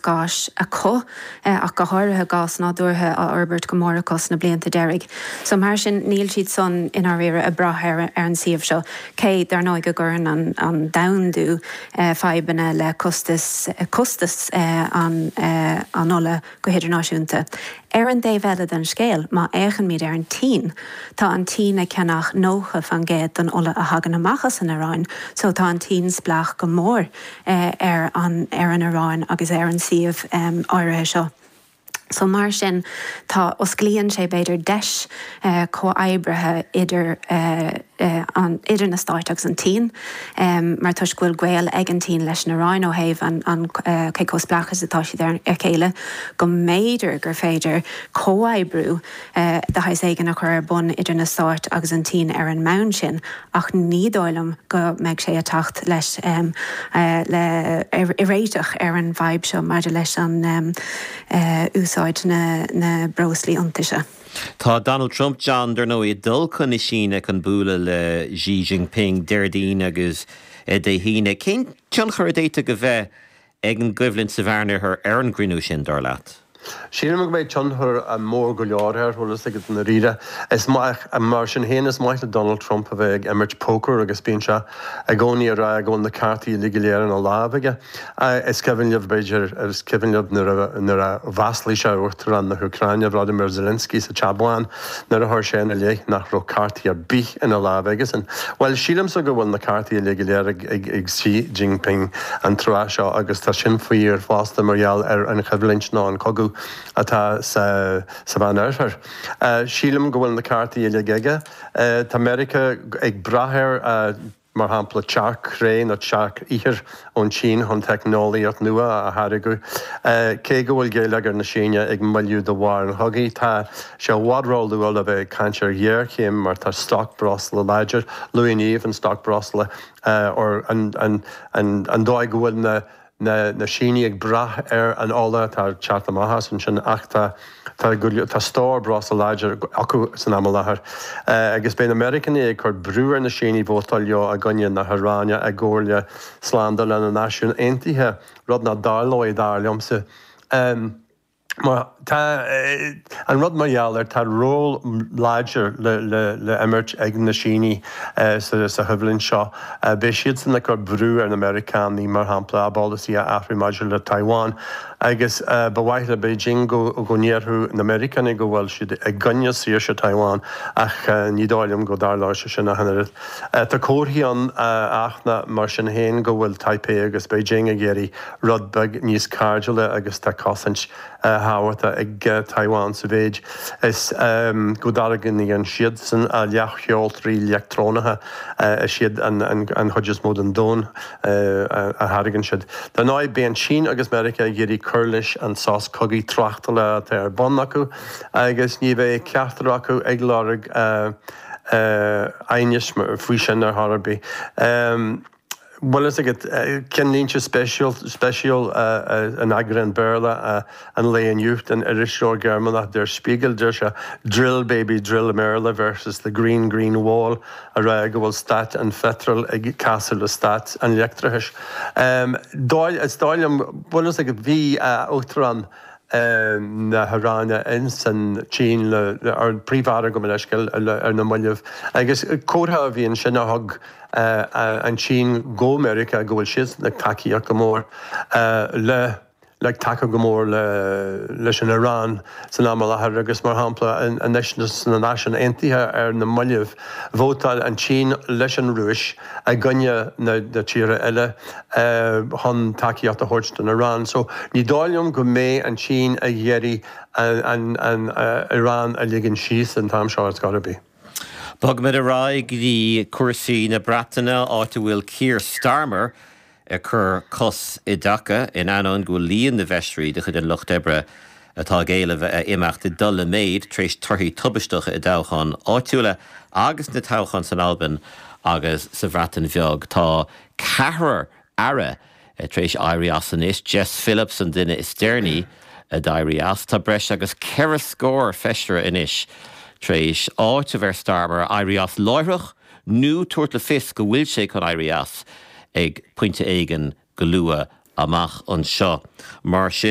gáis acu, ach go háirithe gás nádúrtha, á fhorbairt go mór acu sna blianta deiridh so. Mar sin, níl siad san i ndáiríre ag brath ar an suíomh seo cé, dar ndóigh, go gcuireann an domhandú fadhbanna le costas costas an ola go hidirnáisiúnta. Ar an dtaobh eile den scéal, má fhéachaimid ar an tSín, tá an tSín ag ceannach nócha fén gcéad den ola a thagann amach as an Iaráin so tá an tSín spleách go mór ar an ar an Iaráin agus ar an suíomh áirithe seo so mar sin tá osclaíonn sé b'fhéidir deis comhoibrithe idir an idir na Stáit agus an tSín mar toisc go bhfuil gaol ag an tSín leis an Iaráin ó thaobh an an cé chomh spleách is atá siad ar a chéile go mb'fhéidir gur féidir comhoibriú de shaghas éigin a chur ar bun idir na Stáit agus an tSín ar an mbonn sin, ach ní dóigh liom go mbeidh sé ag teacht leis le réiteach ar an bhfadhb seo maidir leis an úsáid a na breoslaí iontaise. Tá Donald Trump, John, dar ndóigh, ag dul chun na Síne chun bualadh le Xi Jinping Déardaoin agus Dé hAoine. Cén tionchar a d'fhéadfadh a bheith ag an gcoimhlint sa Mheánoirthear ar an gcruinniú sin, dar leat? Sílim go mbeidh tionchar mór go leor air, chuala, i ndáiríre. Is maith, mar sin féin, is maith le Donald Trump a bheith ag imirt poker agus bíonn sé i gcónaí ag rá go bhfuil na cártaí uilig go léir ina lámh aige. Is cuimhin libh, b'fhéidir, is cuimhin libh nuair a mhaslaigh sé Uachtarán na hÚcráine, Volodymyr Zelensky, sa Teach Bán. Nuair a chuir sé ina leith nach raibh cártaí ar bith ina lámh aigesean. Bhuel, sílimse go bhfuil na cártaí uilig go léir ag Xi Jinping an tráth seo agus tá sin fíor fosta mar gheall ar an choimhlint nó an cogadh atá sa Mheánoirthear. Sílim go bhfuil na cártaí uilig aige. Tá Meiriceá ag brath ar. mar shampla tearc-chré nó tearc-ithir ón tSín chun teicneolaíocht nua a tháirgeadh. Cé go bhfuil géilleagar na Síne ag moilliú de bharr an chogaidh, tá sé i bhfad róluath le bheith ag caint ar ghéarchéim mar tá stoc breosla láidir. Luaigh Niamh an stoc breosla, an dóigh go bhfuil na. na Sínigh ag brath ar an ola atá ag teacht amach as ansin ach tá stór breosla láidir acu san am i láthair agus beidh na Meiriceánaigh ag cur brú ar na Sínigh vótáil leo i gcoinne na hIaráine i gcomhairle slándála na Náisiún Aontaithe, rud nach dtarlóidh, dar liomsa. Má tá, an rud mar gheall air, tá ról láidir le himirt ag na Sínigh sa choimhlint seo. Beidh siadsan ag cur brú ar na Meiriceánaigh, mar shampla, a bpolasaí a athrú maidir le Taiwan, agus ba mhaith le Beijing go ndéarfadh na Meiriceánaigh go bhfuil siad i gcoinne saoirse Taiwan, ach ní dóigh liom go dtarlóidh sé sin ach an oiread. Tá comharthaí ann, áfach, mar sin féin, go bhfuil Taipei agus Beijing ag iarraidh rud beag níos cairdiúla agus tá cosaint thábhachta ag Taiwan sa mhéid is go dtáirgíonn siadsan na leathsheoltóirí leictreonacha, is iad an chuid is mó den domhan a tháirgeann siad. Dar ndóigh, beidh an tSín agus Meiriceá ag iarraidh cur leis an sos cogaidh tráchtála atá ar bun acu agus ní bheidh ceachtar acu ag lorg aighnis faoi sin ar chor ar bith. bhfuil fhios agat, cinnlínte spéisiúla in eagrán Béarla an lae inniu den irisleabhar Gearmánach Der Spiegel, deir sé, 'Drill, baby, drill i mBéarla versus the green, green wall', ag rá go bhfuil stát an pheitril ag casadh le stát an leictreachais. Is dóigh liom, bhfuil fhios agat, bhí Uachtarán. na hIaráine ins an tSín le ord prímh-aire go mba leisce le ar na mallaibh agus comhartha a bhí ansin a thug an tSín do Mheiriceá go bhfuil siadsan ag tacaíocht go mór le le ag tacú go mór le leis an Iaráin san am i láthair agus mar shampla anois sna Náisiúin Aontaithe ar na mallaibh Vótáil an tSín leis an Rúis i gcoinne na tíortha eile chun tacaíocht a thabhairt don Iaráin. So, ní dóigh liom go mbeidh an tSín ag iarraidh an Iaráin a ligean síos an t-am seo ar scor ar bith. Bogaimid ar aghaidh go dtí cúrsaí na Breataine, áit a bhfuil Keir Starmer ag cur cos i dtaca, in ainneoin go bhfuil líon na bhfeisirí de chuid an lucht oibre atá ag éileamh a imeacht ag dul i méid tar éis torthaí tubaisteacha i dtoghcháin áitiúla agus na toghcháin san Albain agus sa Bhreatain Bheag. Tá ceathrar aire tar éis éirí as anois, Jess Phillips an duine is deireanaí a d'éirigh as. Tá breis agus ceithre scór feisire anois tar éis áiteamh ar Starmer éirí as láithreach. nó tabhairt le fios go bhfuil sé chun éirí as ag pointe éigin go luath amach anseo. Mar sin.